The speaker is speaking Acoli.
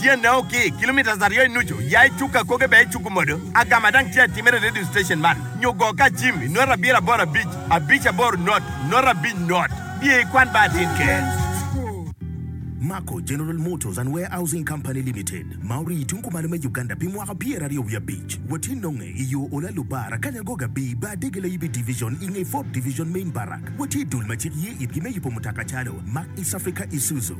Tyene o ki kilometres aryo i nucu, ya i cuk akoge bene icuku modo. Agama dang tye atimere i radio station man nyo go ka jim i nota abiro aboro abic, abic aboro not, not abic not. Biye i kwan ba atin ker. Mako General Motors and Warehousing Company Limited ma orii i tung kumalo me Uganda pi mwaka pyer aryo wiye abic. Watye nonge i yo Ola Lubar, Akanya Goga Abi, Bar Dege Layibi Division i nge Ford Division Main Barrack. Watye i dul ma cik ye itgi me yubo mutoka calo Mack East Africa Isuzu,